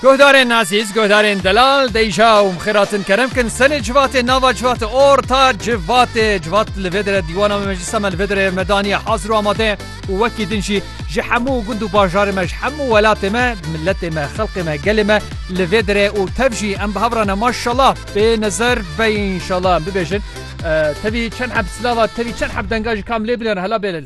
Guhdarên Azîz, guhdarên Delal, Deyja û Mixêratin kerem kin senê civatê nava civatê orta civatê civat li vê dire dîwana me meclisa me li vê dire me daniye hazir û amade û wekî din jî ji hemû gund û bajarê me ji hemû welatê me miletê me xelkê me gelê me li vê dire û tev jî em bi hev re ne maşallah bê nezer bey inşallah em bibêjin tevî çend heb silava tevî çend heb denga ji kam lê bile hela bê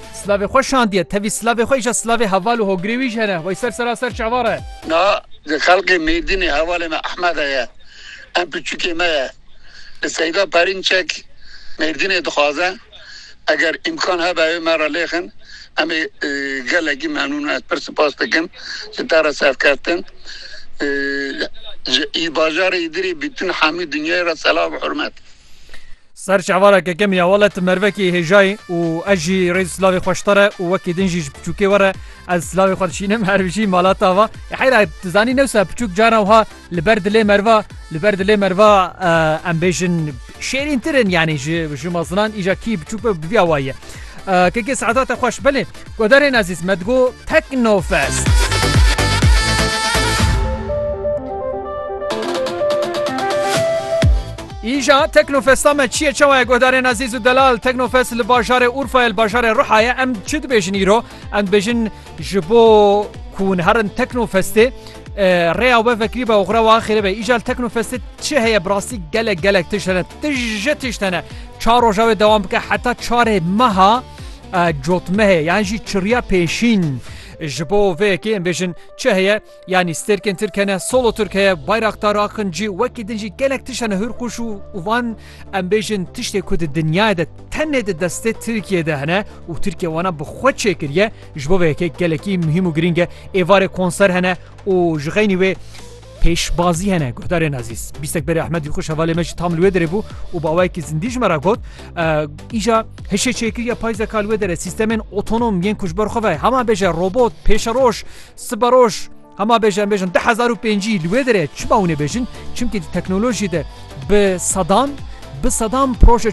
Silavê xwe şandiye, tevî silavê xwe îşa silavê heval û hogirê wî jî hene, wey ser sera ser çavar e. Na ji xelkê Mêrdînê hevalê me Ehmede ye, em piçûkê me ye. Li Seyda Perînçek Mêrdînê dixwaze, eger îmkan hebe ew ê me re lêxin, em ê gelekî memnûn in. Ez pir sipas dikim ji te re serkeftin. Ji Î bajarê Îdirê bîtin hemû dinyayê re selam û hurmet. Ser çavara kekemî ya wele ti mervekî hêjayî û ez jî rê silavê xwe ji te re û wekî din jî ji piçûkê we re ez silavê xwe dişînim her bijî mala ta va heyra tu zanî newsa piçûk caran wiha li ber dilê merva li ber dilê merva em bêjin şêrîntir in yanî ji ji mezinan îja kî piçûk be bi vîya wayî ye kekê saeta te xweş belê. Guhdarên ezîz me digo Teknofest. Îja Teknofesta me çiye çawa ye guhdarên ezîz û delal Teknofest li bajarê Urfayê li bajarê Rihayê em çi dibêjin îro em dibêjin ji bo ku hûn herin Teknofestê rêya we vekirî be oxra wa xêre be îjal Teknofestê çi heye bi rastî gelek gelek tişt hene tije tişt hene çar roja wê dewam bike heta çarê meha Cotmehê yan jî çirya pêşîn. Ji bo vê yekê em bêjin çi heye yanî stêrkên tirk hene, solo tirk heye, bayraxtar axin cî wekî din jî gelek tişt hene hûrqûş û û van em bêjin tiştê ku di dinyayê de tenê di destê Tirkiyeyê de hene û Tirkiye wana bi xwe çêkiriye ji bo vê yekê gelekî muhîm û girîng e. Êvarê konser hene û ji xeynî wê Pêşbazî hene guhdarên ezîz. Bîstek berê Ehmedî xwe şevalê me jî tam li wê derê bû û bawayekî zindî ji me re got îja hişê çêkiriya payzeka li wê derê sîstemên otonom yên ku ji ber xwe ve hema bêje robot pêşeroj siberoj hema bêje em bêjin 2005 li wê derê çima hûnê bêjin çimkî di teknolojiyê de bi sedan bi sedan proje